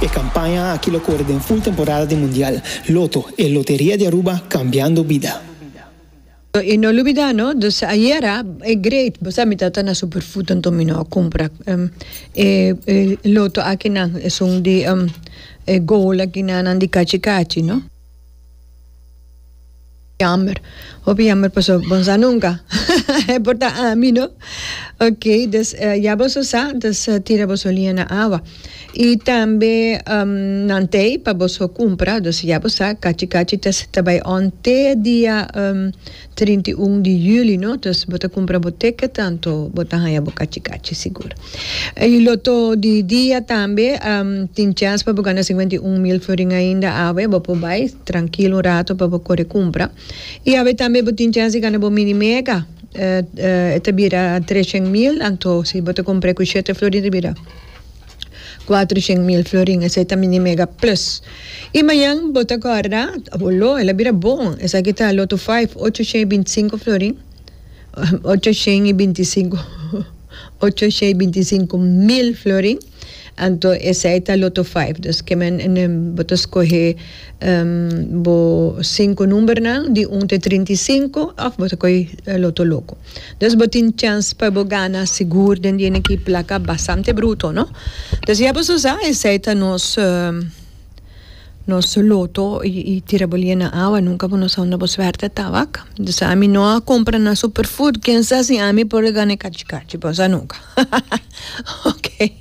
E kampaña aki lo kore den ful temporada di Mundial. Loto, e loteria di Aruba kambiando bida. I no lubidá no, dus ayera e great bosa mita ta na Superfood anto mi no a kumpra e loto akinan, esun di e goal akinan nan di kachi kachi no. Jammer hopi jammer paso bon sa nunca e por ta ami no ok dus ya boso sa dus tira boso lia na awa y tambe nan tey pa boso cumpra dus ya bo sa cachi cachi ta bai on te dia. Trinta i un di juli no dus bo ta kumpra bo ticket tanto bo ta haña bo kachi kachi sigur i loto di dia tambe tin chèns pa bo gana sinkuenta i un mil florin ainda awe bo por bai trankil un rato pa bo kore kumpra i awe tambe bo tin chèns di gana bo mini mega e ta bira treshen mil anto si bo ta kumpr'e ku shete florin ta bira. Cuatro shent mil florin esey ta mini mega plus. Y mayan bo ta guarda bo lo el a bira bon esaki ta loto five ocho shey binti cinco florin ocho shent y binti cinco ocho shey binti cinco mil florin anto esey ta loto five dus ke men bo ta scohe bo cinco number nan di un te trinta y cinco of bo ta coge loto loco. Dous bo tin chèns pa bo gana sigur den di enekí plaka bastante bruto, no? Dous ya boso sa, esei ta nos nos loto i tira bo lie na awa, nunka bo no sa unda bo suerte ta wak. Dous ami no a kompra na superfood, ken sa si ami por a gana e kachi kachi? Bo no sa nunka. Oke.